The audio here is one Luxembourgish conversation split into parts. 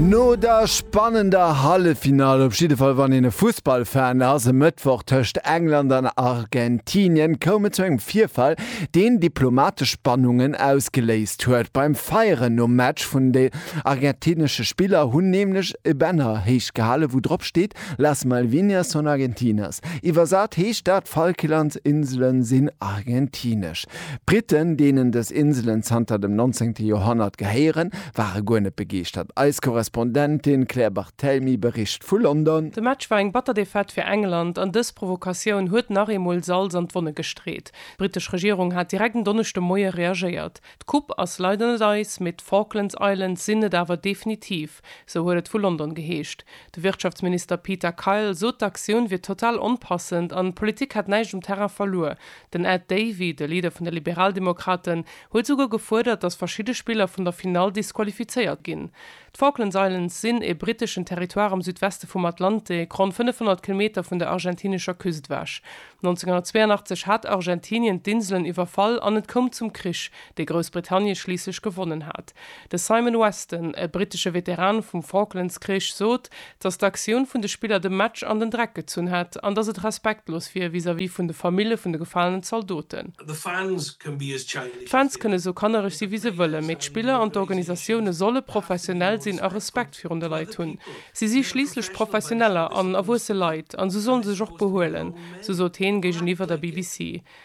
No der spannender Halleffinall, op jidde Fall wann een e Fussballfan ass, e Mëttwoch tëscht England an Argentinien, koum et zu engem Virfall, deen diplomatesch Spannungen ausgeléist huet. Beim Feieren nom Match vun de argentinesche Spiller hunn nämlech e Banner héich gehalen, wou drop steet Las Malvinas son argentinas. Iwwersat heescht dat Falklandsinsele sinn argentinesch. D'Britten, deenen dës Inselen zanter dem 19. Joerhonnert gehéieren, ware guer net begeeschtert. Eis Korrespondentin Claire Barthelmy bericht vu London. De Match war eng batter Defaite fir England an dës Provokatioun huet nach eemol Salz an d'Wonne gestreet. D'brittesch Regierung hat direkt en Donneschde Moie reagéiert. D'Coupe ass leider net eis, mee d'Falklands Islands sinn et awer definitiv. Kierp, sou huet et vu London geheescht. De Wirtschaftsminister Peter Kyle sot d'Aktioun wier total onpassend an d'Politik hätt näischt um Terrain verluer. Den Ed Davey, de Leader vun de Liberaldemokraten, huet souguer gefuerdert, datt verschidde Spiller vun der Finall disqualifizéiert ginn. D'Falklands Islands sinn ee britteschen Territoire am Südweste vum Atlantik, ronn 500 Kilometer vun der argentinescher Küst ewech. 1982 hat Argentinien d'Inselen iwwerfall an et koum zum Krich, dee Groussbritannie schliisslech gewonnen hat. De Simon Weston, e brittesche Veteran vum Falklands-Krich, sot, datt d'Aktioun vun de Spiller de Match an den Dreck gezunn hätt an datt et respektlos wier vis-à-vis vun de Famille vun de gefalenen Zaldoten. D'Fans kënne sou kannereg si wéi se wëllen, mee d'Spiller an d'Organisatioune solle professionell sinn a Respekt virun de Leit hunn. Si si schliisslech Professioneller an erwuesse Leit an sou sollen se sech och behuelen, sou sot heen géigeniwwer der BBC.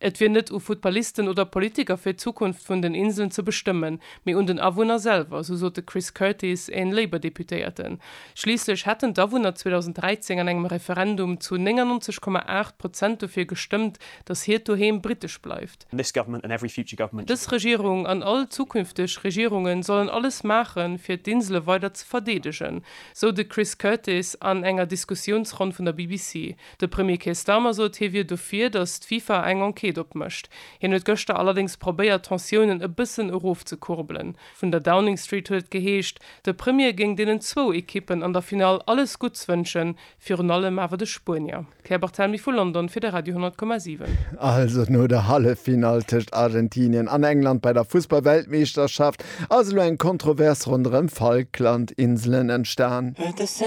Et wier net u Futtballisten oder Politiker fir d'Zukunft vun den Inseln ze bestëmmen, mee un den Awunner selwer, sou sot de Chris Curtis, een Labour-Deputéierten. Schliisslech hätten d'Awunner 2013 an engem Referendum zu 99, 8 Prozent dofir gestëmmt, datt hiert Doheem britesch bleift. Dës Regierung an all zukünfteg Regierungen sollen alles maachen, fir d'Insele weider ze verdeedegen, sou de Chris Curtis an enger Diskussiounsronn vun der BBC. De Premier Keir Starmer sot, hie wier dofir, datt d'FIFA eng Enquête opmécht. Hien huet gëschter allerdéngs probéiert, d'Tensiounen e bëssen erofzekurbelen. Vun der Downing Street huet et geheescht, de Premier géing deenen zwou Ekippen an der Finall alles Gutts wënschen, virun allem awer de Spuenier. Claire Barthelmy vu London fir de Radio 10,7. Also no der Halleffinall tëscht Argentinien an England bei der Fussball-Weltmeeschterschaft ass elo eng Kontrovers ronderëm d'Falkland-Inselen entstan.